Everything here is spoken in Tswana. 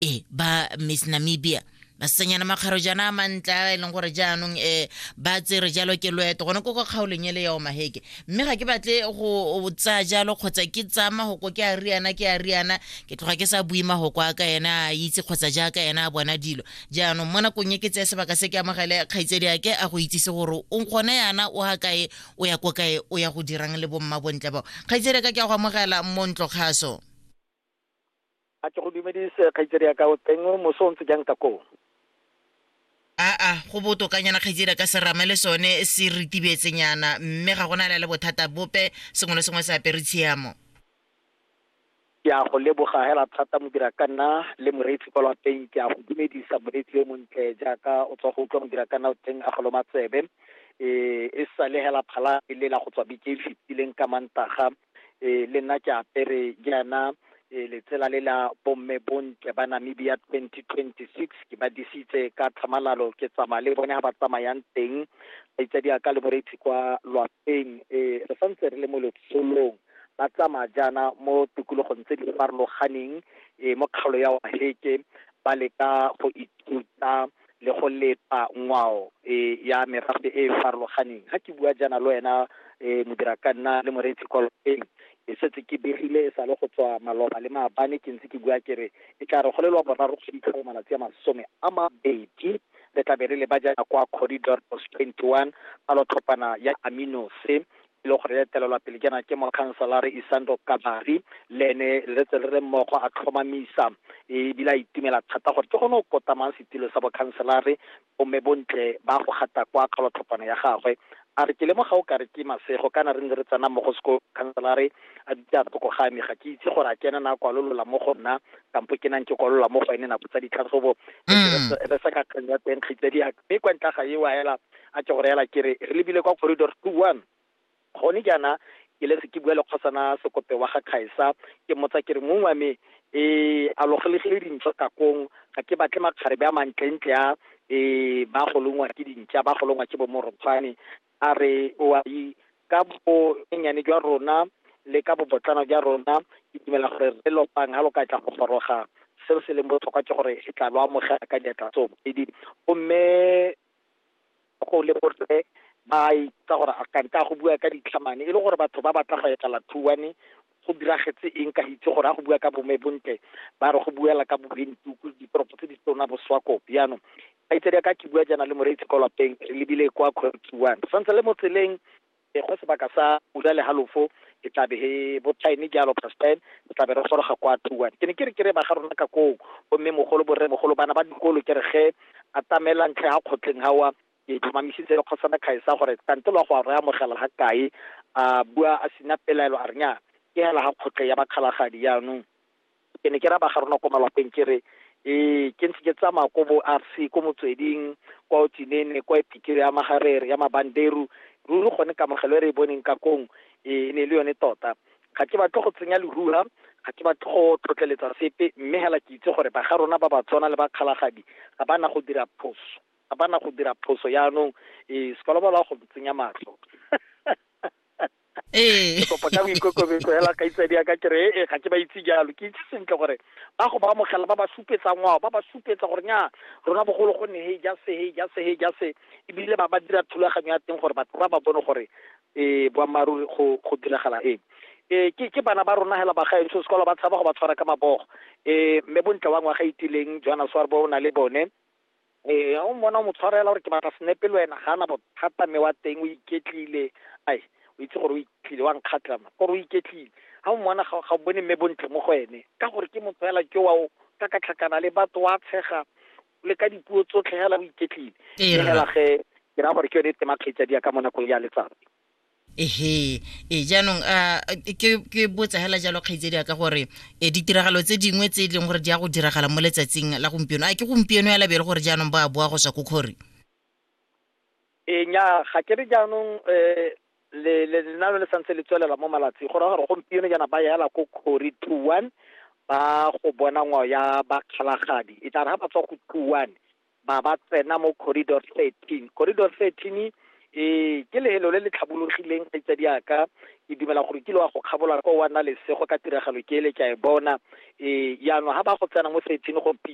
e ba miss namibia basetsanyana makgaro jana a mantle a e leng gore jaanong um ba tsere jalo ke loeto gone ko kwa kgaolong ele ya omaheke mme ga ke batle go tsaya jalo kgotsa ke tsaya magoko ke a riana ke a riana ke tloga ke sa bue magoko a ka ena a itse kgotsa jaaka ena a bona dilo jaanong mo nakong e ke tseye sebaka se ke amogele kgaitsedi ake a go itsise gore o gone yana o ga kae o ya ko kae o ya go dirang le bomma bontle bao kgaitsedi ka ke a go amogela mo ntlo kgaso A ke go dumedise kgaitsedi ya ka o teng moso o ntse jang ka koo? Aa, go botokanyana kgaitsedi ya ka serame le sone se ritibetsenyana mme ga gona la le bothata bope sengwe le sengwe se apere tshiamo. Ke a go leboga hela thata modira ka nna le moreetsi kwa lwapeng ke a go dumedisa moreetsi yo montle jaaka o tswa go utlwa modira ka nna o teng a go loma tsebe e e sale hela phala e lela go tswa beke e fetileng ka mantaga e le nna ke apere jaana e letsela le la bomme bontle ba namibia 2026 ke ba disitse ka tlhamalalo ke tsamaya le bone ga ba tsamayang teng ba itse di aka le moreitsi kwa lwapeng e re santse re le mo letsolong ba tsamaya jaana mo tikologong tse di farologaneng e mo kgaolo ya waheke ba leka go ithuta le go leta ngwao e ya merafe e e farologaneng. Ga ke bua jaana le wena um modira ka nna le moreetsi kwa lapeng ke setse ke begile e sale go tswa maloba le maabane ke ntse ke bua ke re e tla re go le lwa boraro go fitlhela malatsi a masome a mabedi re tlabe re le ba jaana kwa corridor post twenty one palotlhopana ya aminose e le gore etelelwa pele ke na ke mokhanselara isando kabari le ene le tse le re mmogo a tlhomamisa ebile a itumela thata gore ke gone o kotamang setilo sa bokhanselare omme bontle ba go gata kwa kgalotlhopana ya gagwe a re ke lemoga o ka re ke masego kana re ne re tsena mo go sekolo khanselare a dutse a re toko ga me ga ke itse gore a ke ena na kwalolola mo go nna kampo ke nang ke kwalola mo go ene nako tsa ditlhatlhobo re sa ka kgang ya teng kgitse di mme kwa ntla ga e wa hela A ke go reela ke re, re lebile kwa Corridor Two One. Gone jaana ke letse ke bua le Kgosana Sekope wa ga Khaesa, ke mmotsa ke re, Mong wa me, ee, a lo golegile dintšwa ka kong? Ga ke batle makgarebe a mantlentle a, ee, ba golongwa ke dintša, ba golongwa ke bomorokgwane. A re, Oaii, ka bonyenyane jwa rona le ka bobotlana jwa rona, ke dumela gore Rre Lopang ga lo ka tla go goroga, seo se leng botlhokwa ke gore re tla lo amogela ka diatla tsoopedi. Gomme go le borre ba itsa gore a kante a go bua ka ditlhamane e le gore batho ba batla go etela thuane go diragetse eng ka itse gore a go bua ka bome bontle ba re go buela ka bobentuku ditoropo tse di tsona boswako piano ba itse ka ke bua jana le moreitsi kwa lapeng re lebile kwa khotsuane santse le mo tseleng e go sebaka sa ura le halofo ke tlabe he bo time ke alo past time ke tlabe re goroga kwa tuwan ke ne ke re ke re ba ga rona ka koo gomme mogolo borre mogolo bana ba dikolo ke re ge a tamela ntlhe ga kgotleng gawa ke tlhomamisitse le kgosana kgaesa gore kante lwa go a re amogela ga kae a bua a sena pelaelo a renyana ke hela ga kgotle ya bakgalagadi yaanong Ke ne ke raya ba ga rona ko malwapeng ke re, Ee, ke ntse ke tsamaya ko bo RC, ko Motsweding, kwa Otsinene, kwa Epikiri ya Magarere, ya Mabanderu, ruri gone kamogelo e re e boneng ka kong e ne e le yone tota. Ga ke batle go tsenya leruha, ga ke batle go tlotleletsa sepe, mme hela ke itse gore ba ga rona ba Batswana le ba Kgalagadi ga ba na go dira phoso, ga ba na go dira phoso, yanong ee, Sekolobalo a go ntsenya matlho. ee ke kopo ka boikokobetso hela kaitsadi ya ka ke re e ga ke ba itse jalo ke itse sentle gore ba go ba amogela ba ba supetsa ngwao ba ba supetsa gore nya rona bogolo go nne he ja se he ja se he ja se ebile ba ba dira thulaganyo ya teng gore batho ba ba bone gore um boammaaruri go go diragala eng um ke ke bana ba rona hela bagaetsho sekolo ba tshaba go ba tshwara ka mabogo um mme bontle wa ngwaga itileng johannes warbo o na le bone Ee, ga o mmona o mo tshwarela gore ke batla senepe le wena ga ana bothata mme wa teng o iketlile ai o itse gore o iketlile wa nkgatlha ma gore o iketlile ga o mmona ga o bone mme bontle mo go ene ka gore ke motho fela ke wa o ka ka tlhakana le batho wa tshega le ka dipuo tsotlhe fela o iketlile fela ge ke ra gore ke yone e tema kgaitsadia ka mo nakong ya letsatsi ehe e jaanong a ke botsa hela jalo kgaitsedi ya ka gore e ditiragalo tse dingwe tse e leng gore di ya go diragala mo letsatsing la gompieno a ke gompieno ya labele gore jaanong ba boa go tswa ko kgori e nya ga ke re jaanong um le lenano le santse le tswelela mo malatsi go raya gore gompieno jaana ba yela ko kgori two one ba go bona ngwao ya bakgalagadi e tla re ga ba tswa go two one ba ba tsena mo corridor 13 corridor 13 e eh, ke lehelo le le tlhabologileng kgaitsadi yaka ke dumela gore kile wa go kgabola kwa wa nna lesego ka tiragalo ke ele ke a e bona um eh, yaanong ga ba go tsena mo 13 go